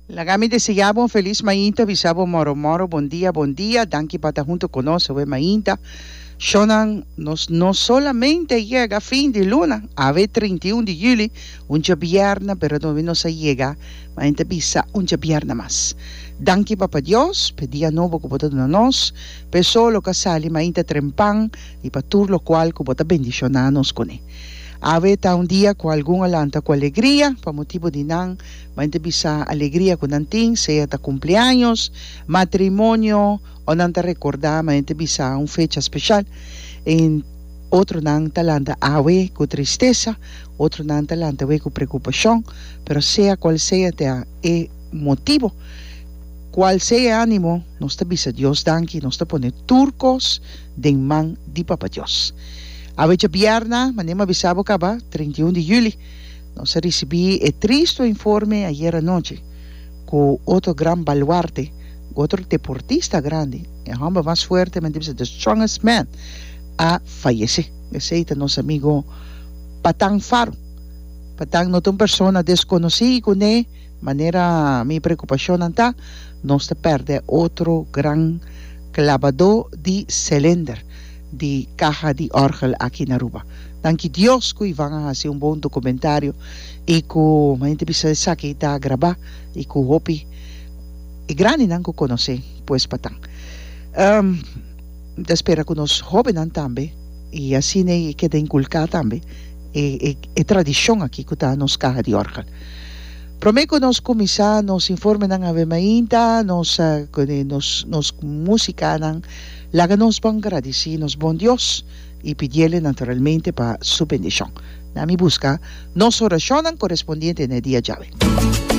Laga mi deseá bo un felis mainta, bisa bo moro moro, bon dia bon dia, danki pa ta hunto ku nos awe mainta. Shownan, nos no solamente yega fin di luna, awe trinta i un di juli, un djabièrnè, pero tambe nos a yega, mainta bisa, un djabièrnè mas. Danki Papa Dios p'e dia nobo ku bo ta duna nos, p'e sol lo ku a sali mainta trempan i pa tur lokual ku bo ta bendishoná nos kuné. Awe ta un dia ku algun a lanta ku alegria pa motibu di nan main ta bisa alegria ku nan tin, sea ta kumpleaños, matrimonio o nan ta rekordá main ta bisa un fecha speshal. Otronan ta lanta awe ku tristesa, otronan ta lanta awe ku preokupashon, pero sea kual sea ta e motibu, kual sea e ánimo, nos ta bisa Dios danki, nos ta pone tur kos. den man di Papa Dios. Awecha bièrnà, manera m'a bisa bo kaba, treinta i un di juli, nos a risibí e tristu informe ayer anochi ku otro gran baluarte, ku otro deportista grandi, e hòmber mas fuerte, men ta bisa the strongest man, a fayesé. Esei ta nos amigo Patang Faru. Patang no ta un persona deskonosí kuné. Manera mi preocupacionnan ta, nos ta perde otro gran clabadó di celender di caha di orgel aki na Aruba. Danki Dios cu Ivan a haci un bon documentario y cu manera bisa esaki ta graba y cu hopi e grandinan cu conoce pues pa tan. Mi ta spera cu nos hobennan tambe y asina e keda inculca tambe e tradicion aki cu ta nos caha di orgel. Prome cu nos cuminsa nos informenan awe mainta nos nos musicanan, laga nos bon gradici nos bon Dios y pidiele naturalmente pa su bendicion. Na mi busca nos oracionnan corespondiente n'e dia djawe.